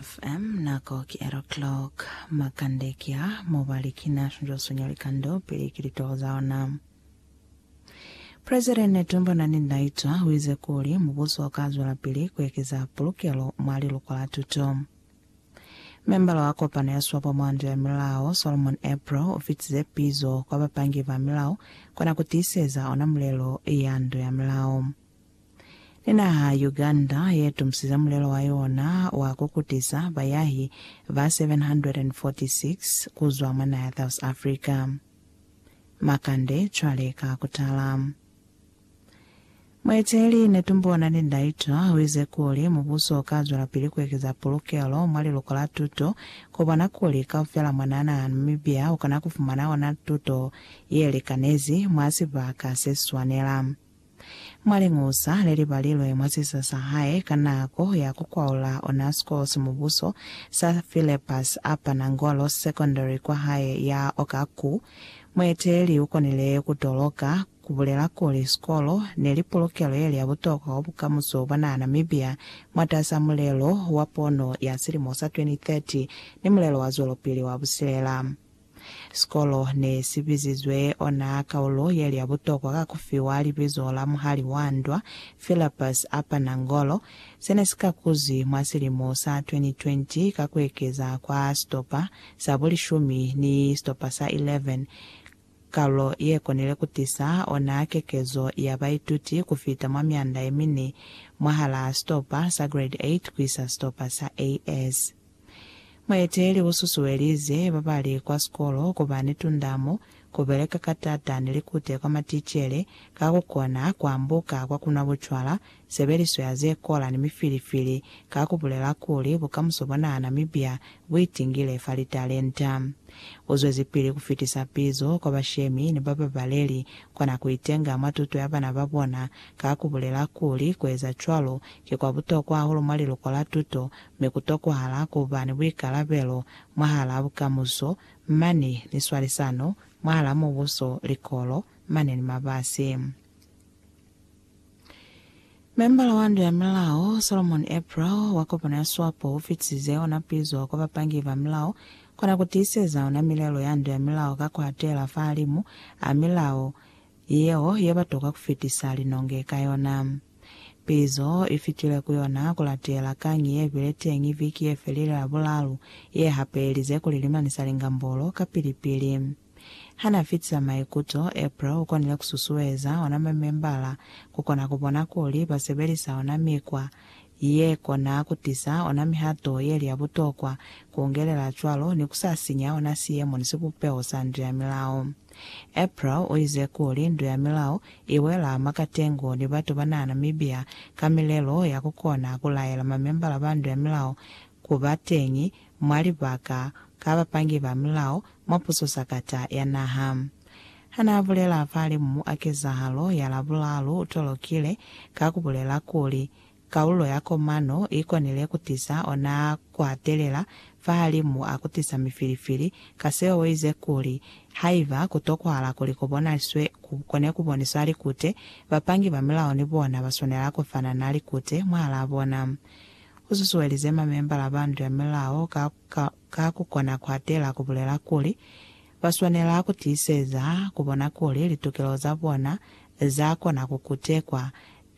FM nako ki ero clock. Makande ki a mo ba li ki na shunjwa sunya likando pili ki litoho za ona. President Netumbo Nandi Ndaitwa uize kuli mubuso u ka zwelapili ku ekeza pulukelo mwa liluko la tuto. Membala wa kopano ya swapo mwa ndu ya milao, Solomon April u fitize pizo kwa bapangi ba milao kona ku tiiseza ona mulelo ya ndu ya milao. Ni naha Uganda ye tumusisa mulelo wa yona wa ku kutisa bayahi ba 746 ku zwa mwa naha ya South Africa. Makande cwale ka ku tala. Mueteleli Netumbo Nandi Ndaitwah u ize kuli mubuso u ka zwelapili ku ekeza pulukelo mwa liluko la tuto ku bona kuli kaufela mwanaa naha ya Namibia u kona ku fumana ona tuto ye likanezi mwa sibaka se swanela. Mwa liñusa le li balilwe mwa sisa sa hae ka nako ya ku kwaula ona sikolo sa mubuso sa Philebus a pana Ngolo Secondary kwa hae ya Okaku, mueteleli u konile ku toloka ku bulela kuli sikolo ne li pulukelo ye li ya butokwa kwa bukamuso bwa naha Namibia mwatas'a mulelo wa pono ya silimo sa 2030 ni mulelo wa zwelopili wa busilela. Sikolo ne si bizizwe ona kaulo ye li ya butokwa ka ku fiwa libizo la muhali wa ndwa, Philipus Apanangolo, se ne si kakuzwi mwa silimo sa 2020 ka ku ekeza kwa sitopa sa bulishumi ni sitopa sa 11, kaulo ye konile ku tisa ona kekezo ya baituti ku fita mwa mianda ye mine mwahalaa sitopa sa Grade 8 ku isa sitopa sa AS. Mueteli u susuelize ba ba li kwa sikolo ku ba ni tundamo, ku beleka ka t'ata ni likute kwa maticele, ka ku kona ku ambuka kwa ku nwa bucwala, sebeliso ya ze kola ni mifilifili, ka ku bulela kuli bukamuso bwa naha Namibia bu itingile fa litalenta. U zwezipili ku fitisa pizo kwa bashemi ni ba babaleli kona ku itenga mwa tuto ya bana ba bona, ka ku bulela kuli ku eza cwalo ki kwa butokwa hahulu mwa liluko la tuto Mi ku tokwahala ku ba ni buikalabelo mwahalaa bukamuso, mani ni swalisano mwahalaa Mubuso, likolo, mani ni mabasi. Membala wa Ndu ya Milao, Solomon April, wa kopano ya Swapo u fitisize ona pizo kwa bapangi ba milao ku na ku tiiseza ona milelo ya Ndu ya Milao ka ku atela fahalimu a milao yeo ye ba tokwa ku fitisa linonge ka yona. Pizo i fitile ku yona ku latela kañi ye bile teñi viki ye felile ya bulalu ye hapelize kuli limani sa lingambolo ka pili-pili. Ha n'a fitisa maikuto, April u konile ku susueza ona mamembala ku kona ku bona kuli ba sebelisa ona mikwa ye kona ku tisa ona mihato ye li ya butokwa, ku ungelela cwalo ni ku sa sinya ona siemo ni sibupeho sa ndu ya milao. April uize kuli ndu ya milao iwela mwa katengo ni batu banaa Namibia ka milelo ya kukona kulaela mamembala ba ndu ya milao kuba teñi mwa libaka ka bapangi ba milao mwa puso sakata ya naha. Hanaa bulela falimu a kezahalo ya Labulalu utolokile ka kubulela kuli, Kaulo ya komano i konile ku tisa ona ku atelela fahalimu a ku tisa mifilifili, ka seo u ize kuli, Haiba ku tokwahala kuli ku bonaliswe ku kone ku boniswa likute, bapangi ba milao ni bona ba swanela ku fanana likute mwahalaa bona. U susuelize mamembala ba ndu ya milao ka, ka, ka ku kona ku atelela ku bulela kuli, ba swanela ku tiiseza ku bona kuli litukelo za bona za kona ku kutekwa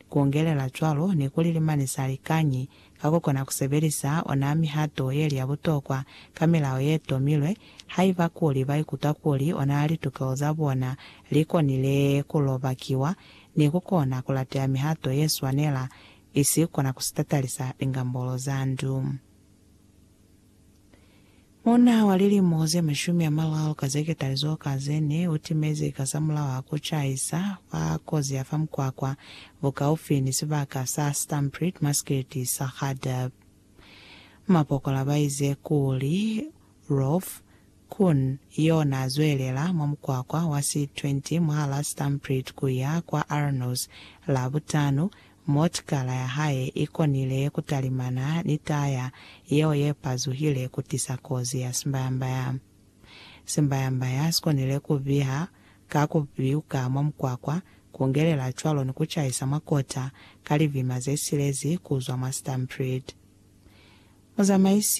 Kuongelela cwalo, nikuli limani sa likañi ka kukona kusebelisa ona mihato yeli ya butokwa ka milao yetomilwe, haiba kuli baikuta kuli ona litukelo za bona likonile kulobakiwa ni kukona kulateya mihato yeswanela, isi kona kusitatalisa lingambolo za ndu. Muuna wa lilimo ze mashumi a mararu ka ze ketalizo ka ze ne u timezi kasamulaho a ku caisa fa kozi ya fa mukwakwa bukaufi ni sibaka sa Stampriet Maskit sa Khaddab. Mapokola ba ize kuli, Rolf, Kun, yo na zwelela mwa mukwakwa wa si 20 mwahala Stampriet ku ya kwa Arnos. Labutanu, motikala ya hae i konile ku talimana ni taya yeo ye pazuhile ku tisa kozi ya simbayambaya. Simbayambaya si konile ku biha ka ku piuka mwa mukwakwa, ku ngelela cwalo ni ku caisa mwa kota ka livima ze silezi ku zwa mwa Stampriet. Muzamaisi.